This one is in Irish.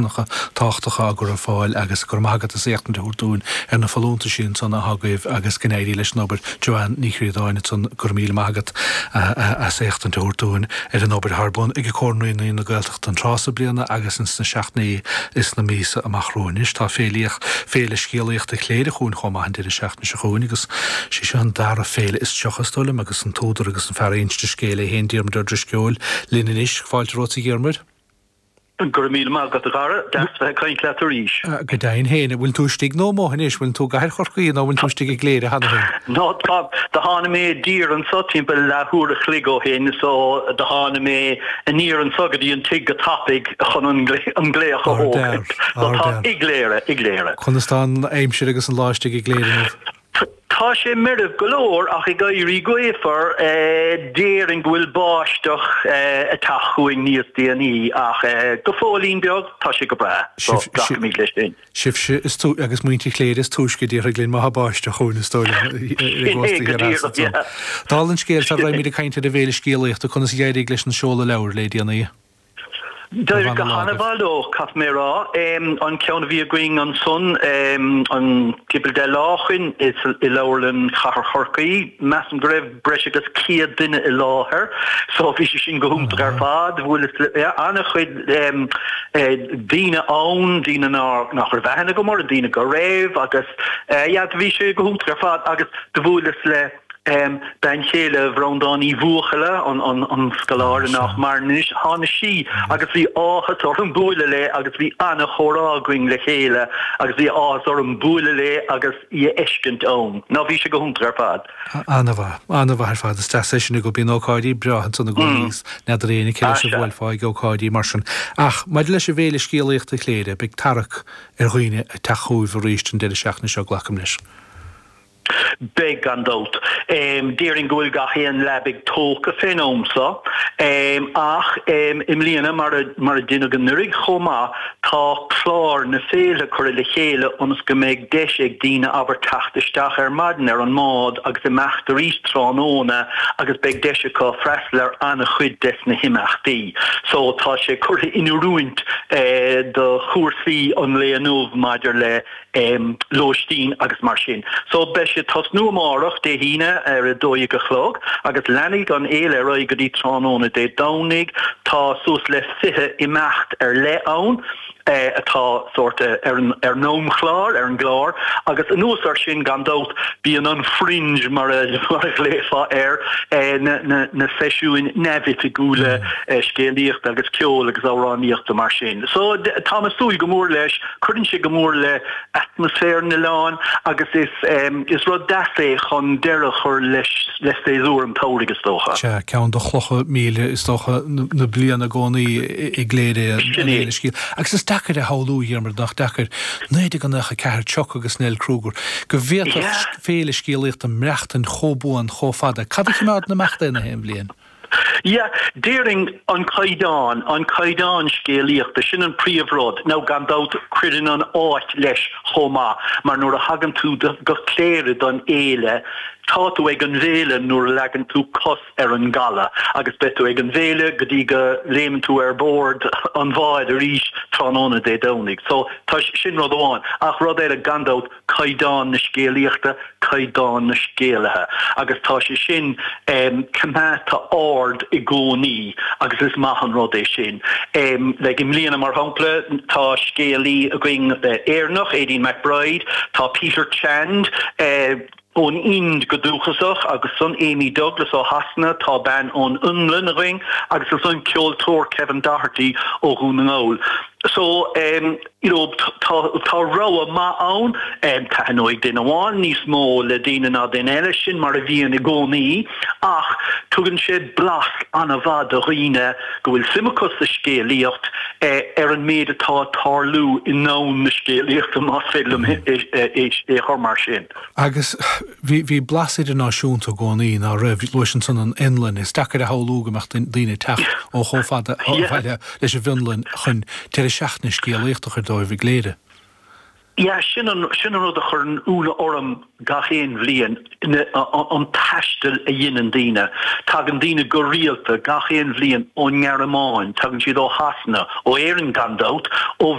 tábhachtacha á gcur ar fáil agus go raibh maith agat as éachtaint a thabhairt dúinn ar na folúntais sin san atá agaibh agus go n-éirí leis an obair. Joanne Ní Chríodáin ansan go raibh míle maith agat as éachtaint a thabhairt dúinn ar an obair atá ar bun ag Comhar Naíonraí na Gaeltachta an tráth so bliana agus ins na seachtainí is na míosa amach romhainn. Anois tá Féile Féile Scéalaíochta Chléire chugainn chomh maith an deireadh seachtaine seo chugainn agus sí seo an dara féile is tríocha is dóigh liom agus an t-údar agus an fear inste scéil é féin Diarmuid Ó Drisceoil linn anois. Fáilte romhat a Dhiarmuid. Go raibh míle maith agat, a Dhara. Deas bheith ag caint leat arís. Go deimhin féin. An bhfuil tú istigh nó amuigh anois? An bhfuil tú i gcathair Chorcaí nó an bhfuil tú istigh i gCléire cheana féin? Do tháinig mé i dtír anseo timpeall leathuair a chloig ó shin so do tháinig mé aniar anseo go dtí an tigh go tapaidh chun an glaoch a thógaint. So tá i gCléire, i gCléire. Conas tá an aimsir agus an lá istigh i gCléire inniu? Tá sé meirbh go leor ach ag éirí gaofar déarfainn go bhfuil báisteach ag teacht chugainn níos déanaí ach go fóillín beag tá sé go breá so glacaimid leis sin. Sibhse agus muintir Chléire is túisce a déarfaidh linn má tá báisteach chugainn is dóigh liom ar an gcósta thiar theas. Dála an scéil sara mbeimid ag caint ar an bhféile scéalaíochta conas a d'éirigh leis an seoladh leabhair le déanaí? D'éirigh go han-mhaith leo, caithfidh mé a rá. An ceann a bhí againn ansan, an Diabhal de Lá Úd, i Leabharlann Chathair Chorcaí, measaim go raibh breis agus 100 duine i láthair, so bhí sé sin go hiontach ar fad. Do bhuaileas le an-chuid daoine ann, daoine nach raibh aithne agam orthu, daoine go raibh, agus yeah, bhí sé go hiontach ar fad agus do bhuaileas le. bean chéile Bhreandán Uí Bhuachalla, an scoláire nach maireann anois, tháinig sí agus bhí áthas orm bualadh léi agus bhí an-chomhrá againn le chéile agus bhí áthas orm bualadh léi agus í a fheiscint ann. Ná bhí sé go hiontach ar fad. An-mhaith, an-mhaith ar fad. Is deas é sin go mbíonn ócáidí breátha ansan i gcónaí is n'fheadar éinne cé leis a bhuailfeá ag ócáidí mar sin. Ach maidir leis an bhféile scéalaíochta Chléire, beidh tarrac ar dhaoine ag teacht chugaibh arís an deireadh seachtaine seo, glacaim leis? Beidh, gan dabht. Déarfainn go bhfuil gach aon leabaidh tógtha fén am so, ach i mbliana, mar a deineadh anuraidh chomh maith, tá clár na féile curtha le chéile ionas go mbeidh deis ag daoine, abair, teacht isteach ar maidin ar an mbád agus imeacht arís tráthnóna agus beidh deis acu freastal ar an-chuid des na himeachtaí so. Tá sé curtha in oiriúint do chúrsaí an lae inniu maidir le. lóistín agus mar sin. So beidh sé ag tosnú amárach, Dé hAoine, ar a dó dhéag a chlog agus leanfaidh an fhéile ar aghaidh go dtí tráthnóna Dé Domhnaigh. Tá suas le fiche imeacht ar leith ann atá sórt ar an amchlár, ar an gclár, agus anuas ar sin gan dabht bíonn an Fringe mar a ghlaofá air, na seisiúin neamhoifigiúla scéalaíochta agus ceoil agus amhránaíochta mar sin. So táim ag súil go mór leis. Cuireann sé go mór le atmaisféar an oileáin agus is rud deas é chun deireadh a chur le saesúr an tsamhraidh is dócha. Sea, ceann de chlocha míle is dócha na bliana i gcónaí i gCléire é an Fhéile Scéal. Agus is deacair a shamhlú, a Dhiarmuid, nach deacair, 1994, Chuck agus Nell Kruger, go bhféadfadh an Fhéile Scéalaíochta maireachtain chomh buan chomh fada. Cad a chimeádann ag imeacht í in aon bhliain? Yeah, déarfainn an caighdeán, an caighdeán scéalaíochta, sin an príomhrud. Now, gan dabht, cuireann an áit leis chomh maith, mar nuair a thagann tú go Cléire don fhéile, tá tú ag an bhféile nuair a leagann tú cos ar an gcaladh agus beidh tú ag an bhféile go dtí go léimeann tú ar bord an bháid arís tráthnóna Dé Domhnaigh. So, tá, sin rud amháin. Ach rud eile, gan dabht, caighdeán na scéalaíochta, caighdeán na scéalaithe agus tá sé sin coimeádta ard i gcónaí agus is maith an rud é sin. Like i mbliana mar shampla tá scéalaí againn Éireannach, Aidan McBride, tá Peter Chand ón Ind go dúchasach agus ansan Amy Douglas ó Shasana, tá bean ón Fhionlainn againn agus ansan ceoltóir Kevin Doherty ó Dhún na nGall. So. you know tá tá rogha maith ann taitneoidh duine amháin níos mó le daoine ná duine eile sin mar a bhíonn i gcónaí ach tugann sé blas an-mhaith do dhaoine go bhfuil suim acu sa scéalaíocht ar an méid atá ag tarlú i ndomhan na scéalaíochta más féidir liom é a chur mar sin. Agus bhí bhí blas idirnáisiúnta i gcónaí ná raibh luais ansan an Fhionlainn is deacair a shamhlú go mbeadh daoine ag teacht ó chomh fada ó bhaile leis an bhFionlainn chun deireadh seachtaine scéalaíochta a chur díobh i gCléire. Yeah, sin an rud a chuireann ionadh orm gach aon bhliain, an taisteal a dheineann daoine. Tagann daoine go rialta gach aon bhliain ón nGearmáin, tagann siad ó Shasana, ó Éirinn gan dabht, ó.